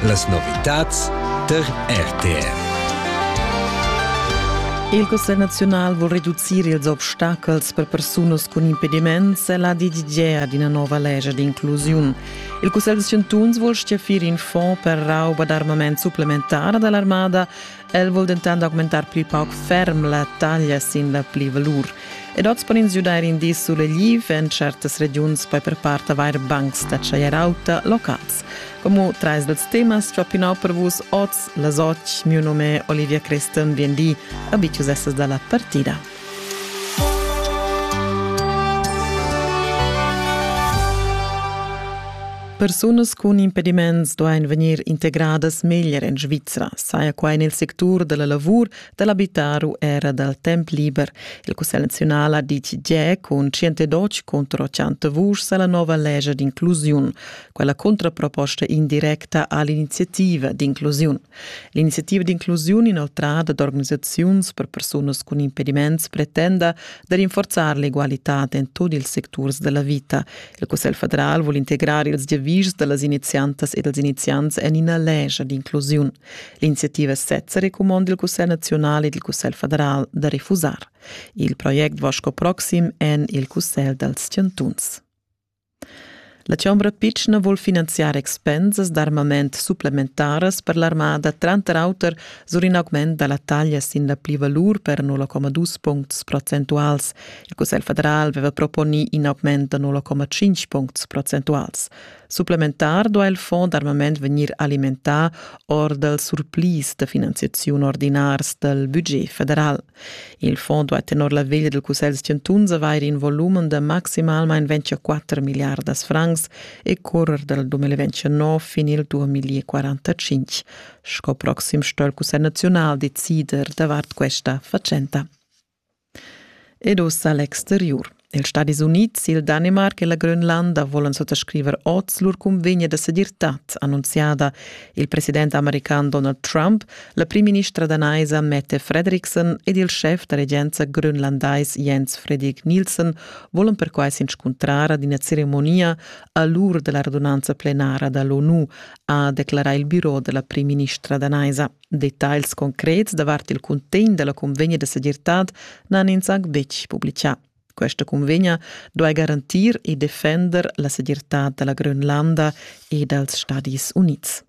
Las novitads tar RTR. Il Cussegl nazional vuol reducir ils obstacels per persunas cun impediments e la d'idea d'ina nova legge d'inclusione. Il Cussegl de Scientuns vuol stiafir in fonds per rauba d'armament supplementara dall'armada El vul dentant augmentar pli pauc ferm la taglia sin la pli-valur. Ed oz pon ins giudair in di sulegliv en certas regiuns, poi per part avair bancs da tschaier auta locals. Como trais dels temas ciò pinau per vus oz las oc, miu nome Olivia Creston, bien di, abitius essas dalla partida. Persunas cun impediments duain vegnir integradas meglier en Svizra, saja quai en il sectur da la lavur, da l'abitar u era dal temp liber. Il Cussegl naziunal ha ditg giè cun 112 contro 100 vuschs a la nova legia d'inclusiun. Quella contraproposta indirecta ha l'iniziativa d'inclusiun. L'iniziativa d'inclusiun inoltrada d'organisaziuns per persunas cun impediments pretenda da rinforzar l'egualitad en tut ils secturs della vita. Il Cussegl federal vuol integrar ils giavischs dallas iniziantas e dals iniziants en ina legia d'inclusiun. L'iniziativa sezza recomanda il Cussegl nazional ed il Cussegl federal da refusar. Il project Vasco Proxim en il Cussegl dals Chantuns. La chombra pitschna vul finanziar expensas d'armament supplementaras per l'armada, tranter auter sur in augment da la taglia sin la plivalur per 0,2 puncts procentuals. Il Cussegl federal aveva proponì in augment da 0,5 puncts procentuals. Supplementar duai il fond d'armament vegnir alimentà or dals surplis da finanziaziun ordinars dal budget federal. Il fond duai tenor la veglia dal Cussegl chantuns avair in volumen da maximalmain 24 milliardas francs e currer dal 2029 fin il 2045. Sco proxim sto il Cussegl naziunal decider davart questa fatschenta. Ed ussa l'exteriur. Ils Stadis Unids, il Danimarc e la Grönlanda volan suttascriver oz lur cunvegna da segirtad, annunziada. Il president american Donald Trump, la primministra danaisa Mette Fredriksen ed il schef da regenza grönlandais Jens Frederik Nielsen volan perquai s'inscuntrar ad ina ceremonia a l'ur della radunanza plenara dall'ONU, ha declarà il biro della primministra danaisa. Detagls concrets davart il cuntegn della convegna de segirtad n'han ins anc betg publicà. Questa convegna duai garantir e defender la segirtad della Grönlanda e dals Stadis Units.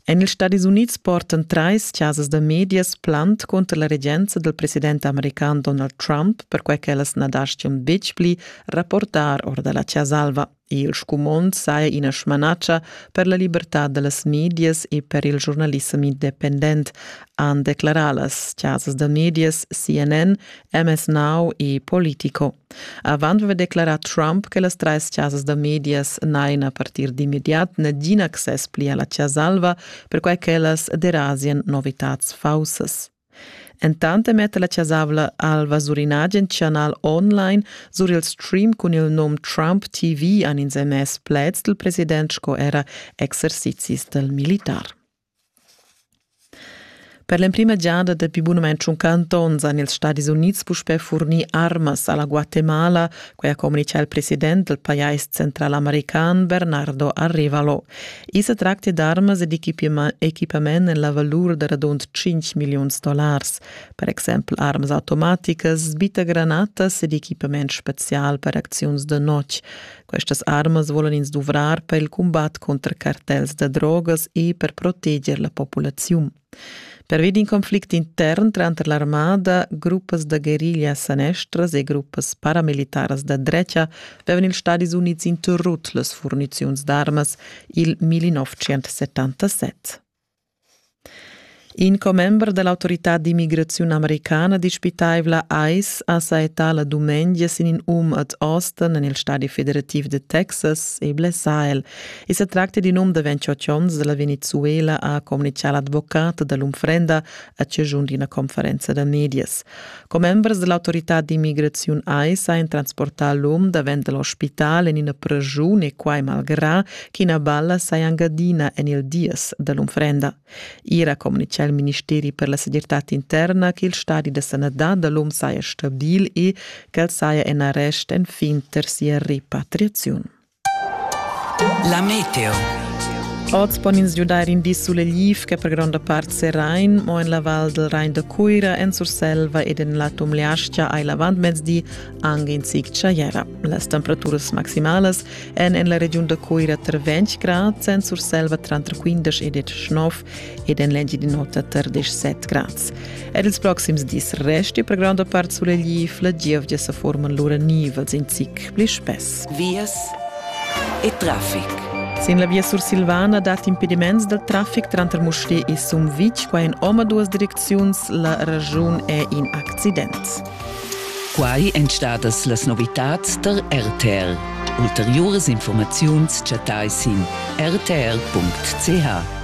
En ils Stadis Units portan trais chasas da medias plant contro la regenza del president american Donald Trump perquai ch'ellas na daschian betg pli rapportar or da la Chasa Alva. Il scumond saja ina smanatscha per la libertad da las medias e per il giurnalissem independent, han declarà las chasas da medias CNN, MS Now e Politico. Avant aveva declarà Trump che las trais chasas da medias n'hajan a partir d'immediat nagin access pli a la Chasa Alva, perquai ch'ellas derasian novitads faussas. Entant metta la chasavla Alva sur in agen chanal online sur il stream cun il num Trump TV han ins emess pleds dal president sco era exercizis dal militar. Per l'emprima giada dapi bunamain tschunca onns han ils Stadis Unids puspè furnì armas a la Guatemala quai ha communitgà il president del pajais centralamericán Bernardo Arrivalo. I se tracti d'armas ed equipament en la valur de radund 5 milions dollars, per exempel armas automaticas, sbitagranatas ed equipament special per acziuns de notg. Questas armas volan ins duvrar per il combat contra cartels de drogas e per proteger la populazione. Pervi d'in conflict intern tranter l'armada, gruppas da guerriglia sanestras e gruppas paramilitaras da dretga avevan ils Stadis Unids interrut las furniziuns d'armas il 1977. In commember da l'autorità d'immigraziun americana dispitaivla ICE ha saettà la dumengia sin in um ad Austin en il stadi federativ de Texas e blessà el, I sa tracta d'in um da 28 onns da la Venezuela ha communitgà l'advocat da l'unfrenda a chaschun d'ina conferenza da medias. Commembers da l'autorità d'immigraziun AIS han transportà l'um davent da l'ospital en ina pregiun e quai malgrà ch'ina balla saja angadina en il dies da l'unfrenda. Ier ha communitgà il ministeri per la segirtad interna che il stadi da sanadad da l'um saja stabil e ch'el saja en arrest enfin tar sia repatriaziun. La meteo. Oz pon ins giudair in di sulegliv che per gronda part Serain, mo en la val del Rain da Cuira, en Surselva ed en la Tumleastgia hai l'avantmezdi anche in zic tschaiera. Las temperaturas maximalas èn en la regiun da Cuira tra 20 grad, en Surselva tranter 15 ed 19 ed en l'Engiadin'Ota tar 17 grads. Er ils proxims dis resti per gronda part sulegl La gievgia sa forman lura nivels in zic pli spess. Vias e traffic. Sin la via sursilvana dat impediments dal traffic tranter Musté e Sumvitg, qua in omaduas direcziuns, la ragiun è in accident. Quai èn stadas las novitads tar RTL. Ulteriuras informaziuns chattai sin rtl.ch.